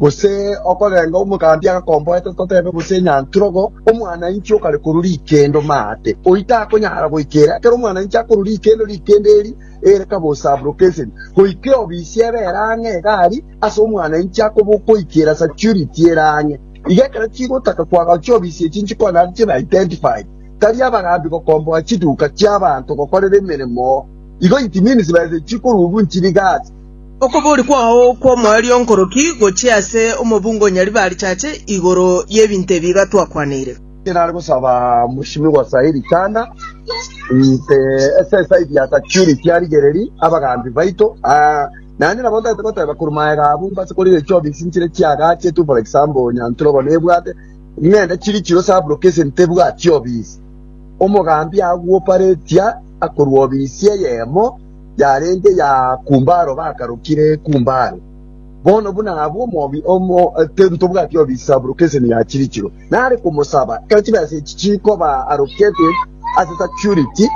Gose okorenga omogambi agakomboete totebe, gose enyanturogo, omwanainchi okare korwa rikendo maate, oyio takonyara goika ere. Ekero omwanainchi akorwa rikendo, rikendo eri ere kabosa abrocation, goika eobisi ebe ere ang'e iga aria, ase omwanainchi akoba okoikera security ere ang'e iga. Ekero chigotaka koagawa chiobisi echi nchikonyara ase chibe identified, tari abagambi gokomboa chiduka chiabanto gokorera emeremo. Igo it means besa echi chikorubu nchire iga ase. Okobori kwao kw'omoerio nkoroki gochia ase omobunga o Nyaribarichache igoro y'ebinto ebi iga twakwaneire. Inche nare gosaba Mwishimiwa Said Chanda inche ase eside ya security arigereri abagambi baito naende nabo ntagete goteba korwa magega abwo mbase korigereria chiofisi nchire chiagachetwe for example Nyanturwa bono ebwate ng'ende chiri chiro sub location tebwati ofisi omogambi agooperatia akorwa ofisi eyemo. yarenge ya Kumbaro bakarokire Kumbare. Bono buna abwo omobi omo ntobwati obisabu rokeseni ya chirichiro nare komosaba ekero chibesa echi chikoba arokete ase security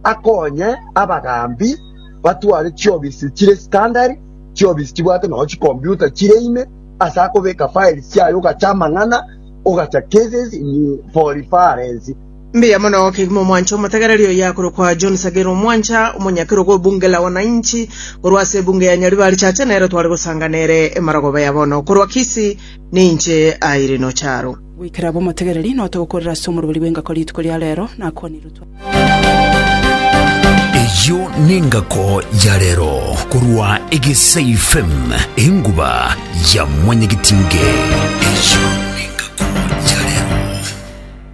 akonye abagaambi batware chiobisi chire standard chiobisi chibwate nonye chicomputer chire ime ase akobeka files chiaye ogacha amang'ana ogacha cases in for reference Mbuya mono kegima omwancha omotegereria oyo akorokwa John Sagero Omwancha, omonyakerogo o Bunge la Wananchi, korwa ase ebunge ya Nyaribari Chache nere tware gosanga nere Emarogoba ya bono korwa Kisii, ninche Irene Ocharo. Goikera aba omotegereri note gokorera ase omorobori bw'engako rituko ria rero, nakwanirwe twa. Eyio nengako ya rero korwa Egesai FM enguba ya mwanyagetinge. Eyio.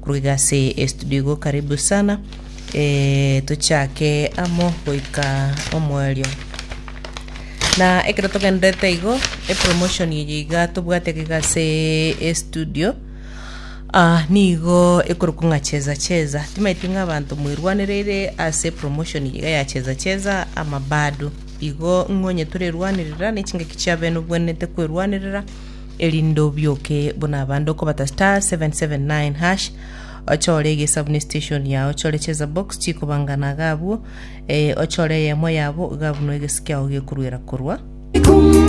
Korwa iga ase estudio igo karibu sana eh, tochake amo goika omoerio na ekero togenderete igo epromotion eye iga tobwate iga iga ase estudio ah, nigo ekorokwa ng'a cheza cheza timaeti ng'a abanto mwerwanereire ase promotion eye iga ya cheza cheza ama bado igo ng'onye torerwanerera na echingaki chiabene obwenerete kwerwanerera erinde obioke buna abande okobata star 779 hash ochore egesabuni station yao ochore cheza box chikobangana iga abwo eh, ochore eyemo yabo iga abwo no egesi kiao gekorwera korwa